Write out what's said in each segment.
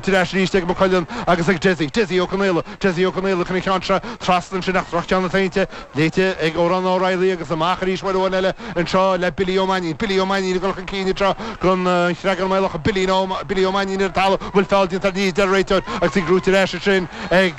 Tugtha ar ais arís ag McQuillan agus ag Dessie, Dessie Ó Conaola, Dessie Ó Conaola cun an cheann seo trasna ansin ach droch-cheann a deineadh, léite ag Odhrán Ó Reilly agus amach arís uair amháin eile anseo le Billy Ó Mainín, Billy Ó Mainín ag dul chun cinn anseo gun an Chreagáin Maolach, Billy no, Billy Ó Mainín ar an talamh, bhfuil feall déanta ní hea a deir an réiteoir agus í curtha ar ais ansin ag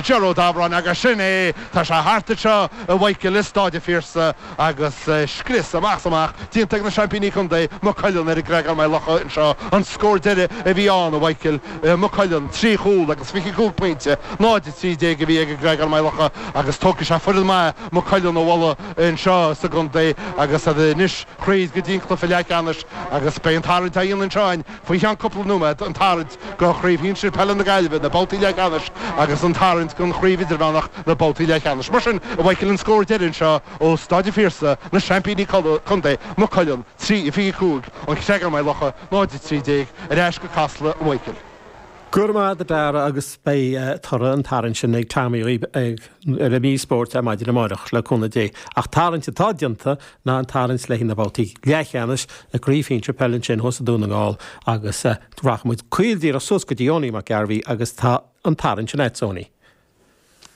Ger Ó Dabhráin agus sin é, tá sé thart anseo a Mhichael i Stáid an Phiarsaigh. Agus scrios amach 's amach déanta ag na seaimpíní contae, Maigh Cuilinn, ar an gCreagán Maigh Locha anseo, an scór deiridh a bhí ann, a Mhaidhcil, Maigh Cuilinn, trí chúl agus fiche cúig pointe, 0-13 a bhí ag an gCreagán Maigh Locha agus tógfaidh sé foireann mhaith Maigh Cuilinn a bhualadh anseo sa gcontae agus iad anois thríd go dtí an cluiche leath cheannais agus beidh an tarraingt á dhéanamh anseo in Faoi cheann cúpla nóiméad an tarraingt do Craobh Shinsir Peile na Gaillimhe, na babhtaí leathcheannais agus an tarraingt don Chraobh Idirmheánach, na babhtaí leathcheannais. Mar sin a Mhaidhcil an scór deiridh anseo ó Staid an Phiarsaigh, na seaimpíní contae, Maigh Cuilinn, 3, 25, An Creagán-Maigh Locha, 0, 13, ar ais go Casla a Mhaidhcil. Go raibh maith agat a Darragh agus beidh toradh an tarraingt sin ag Tommy ar mhír spóirt na maidine amáireach le cúnamh Dé. Ach tarraingt atá déanta ná an tarraingt le haghaidh na babhtaí leathcheannais i gCraobh Shinsir Peile ansin thuas i Dún na nGall agus rachaimid caol díreach suas go dtí Eoiní Mac Gairbheith agus tá an tarraingt sin agatsa a Eoiní.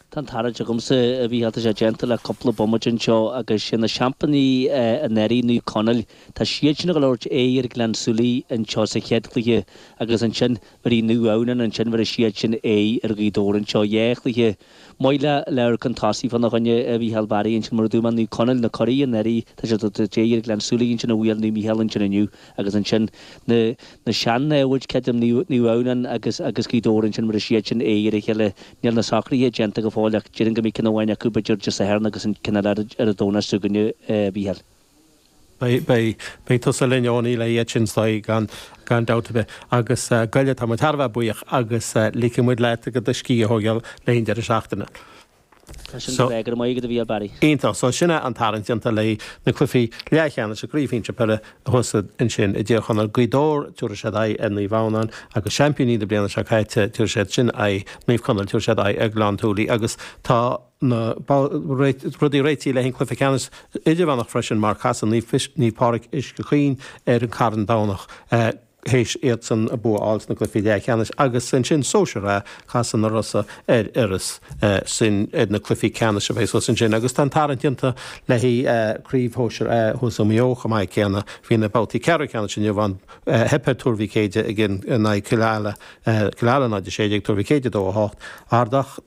Tá an tarraingt agamsa, a Mhícheál, tá sé déanta le cúpla bomaite anseo agus sin na seaimpíní anuraidh, Naomh Conaill. Tá siad sin ag tabhairt aghaidh ar Ghleann Súilí anseo sa chéad chluiche agus ansin arís Naomh Adhamhnáin ansin bhéarfaidh siad sin aghaidh ar Ghaoth Dobhair anseo dhá chluiche maith le labhairt chun tosaigh fánár gcoinne a Mhícheál Bharry ansin mar a dúirt mé Naomh Conaill na curaí anuraidh tá siad ag tabhairt aghaidh ar Ghleann Súilí ansin a bhuail Naomh Mícheál ansin inniu agus ansin na na sean-namhaid creidim Naomh Adhamhnáin agus agus Gaoth Dobhair ansin bhéarfaidh siad sin aghaidh ar a chéile níl na socraithe déanta go fóill ach déarfainn go mbeidh ceann amháin acu b'fhéidir Dé Sathairn agus an ceann eile ar an Domhnach ansin againn a Mhícheál. Beidh. Beidh tusa linn, Eoiní, len iad sin gan dabht ar bith. Agus gabh i leith, tá muid thar a bheith buíoch agus ligfidh muid leat do scíth a thógáil le haghaidh an deireadh seachtaine. Tá sin go breá. Go raibh maith agat, a Mhíchíl, Barry. Iontach. So, sin é an tarraingt déanta le na cluichí leathcheannais i gCraobh Shinsir Peile thuas ansin i dTír Chonaill. Gaoth Dobhair, tabharfaidh siad aghaidh ar Naomh Adhamhnáin, agus seaimpíní na bliana seo caite, tabharfaidh siad sin aghaidh, Naomh Conaill, tabharfaidh siad aghaidh ar Ghleann Súilí agus tá, na rudaí réitithe le haghaidh an Chluife Ceannais Idirmheánach freisin mar casfaidh Naomh Pádraig Uisce Chaoin ar an Carn Domhnach th'éis iadsan a bua a fháil sna cluifí leathcheannais agus ansin Sóisear A casfaidh na Rosa ar Iorras sin iad na cluifí ceannais a bheas thuas ansin agus tá an tarraingt déanta le Craobh Shóisear A thuas i Maigh Eo chomh maith céanna. Bhí na babhtaí ceathrú ceannais inniu ann. Theip ar Thuar Mhic Éadaigh in aghaidh Cill Ala, Cill Ala 0-16, Tuar Mhic Éadaigh 2-8, Ardach,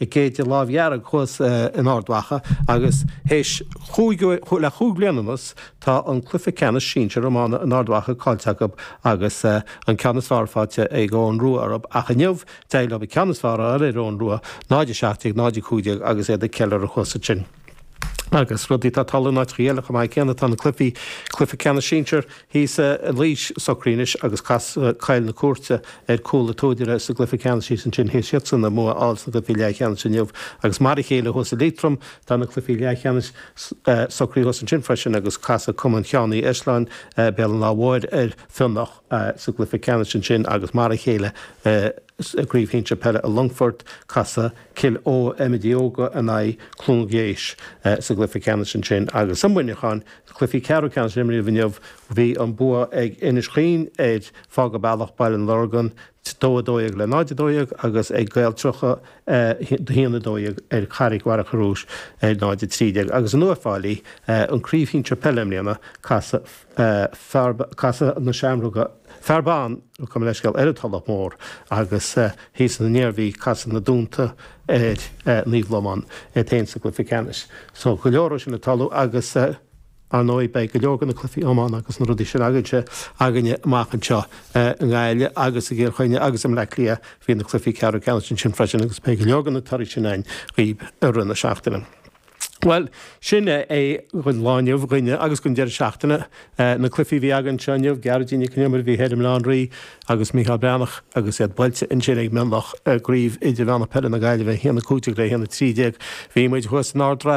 ag Céide Lámh Dhearg thuas in Ard Mhacha agus théis chúig uair, le chúig bliana anuas, tá an cluiche ceannais sinsear iomána in Ard Mhacha caillte acu agus an ceann is fearr faighte ag Eoghan Rua orthu ach inniu d'éirigh leo an ceann is fearr a fháil ar Eoghan Rua, 0-17, 0-15 agus iad ag ceiliúradh thuas ansin. Agus rudaí atá ag tarlú in áiteachaí eile chomh maith céanna, tá na cluichí, cluiche ceannais sinsir thíos i Laois, socraithe anois agus casfaidh Coill na Cúirte ar Chúil an tSúdaire sa gcluiche ceannais thíos ansin théis iadsan an bua a fháil sna gcluichí leathcheannais inniu agus mar a chéile thuas i Liatroim, tá na cluichí leathcheannais, socraithe thuas ansin freisin agus casfaidh Cumann Sheáin Uí Eislin Béal an Átha Móir ar Fíonach sa gcluiche ceannais ansin agus mar a chéile i. Sa gcraobh shinsir peile i Longfort, casfaidh Cill Eo Eiméid Óga in aghaidh Chluain Geis sa gcluiche ceannais ansin agus i Muineachán, cluichí ceathrú ceannais a imríodh inniu, bhí an bua ag Inis Chaoin ar Fág an Bealach, Baile an Lorgain, 2-12 le 0-12 agus ag Gaeil Triúcha 1-12 ar Charraig Mhachaire Rois, 0-13. Agus in Uíbh Fhailí, an craobh shinsir peile i mbliana, casfaidh. Casfaidh na Seamróga, Féar Bán nó gabh mo leithscéal ar an Tulach Mhór agus thíos san Iarmhí casfaidh na Dúnta ar Naomh Lomáin féin sa cluiche ceannais. So go leor ó sin ag tarlú agus ar ndóigh beidh go leor de na cluichí iomána agus na rudaí sin againse againne amach anseo i nGaillimh agus i gCill Chainnigh agus i mBleá Cliath. Bhí na cluichí ceathrú ceannais ansin freisin agus beidh go leor de na torthaí sin againn dhaoibh i rith na seachtaine. Bhuel, sin é é don lá inniu dhúinne agus don deireadh seachtaine. Na cluichí a bhí againn anseo inniu, Gearóidín Nic an Iomaire, bhí thoir i mBaile Átha an Rí agus Mícheál Breathnach agus iad buailte ansin ag Mionlach i gCraobh Idirmheánach Peile na Gaillimhe, 1-15 le 1-13. Bhí muid thuas in Ard an Rátha.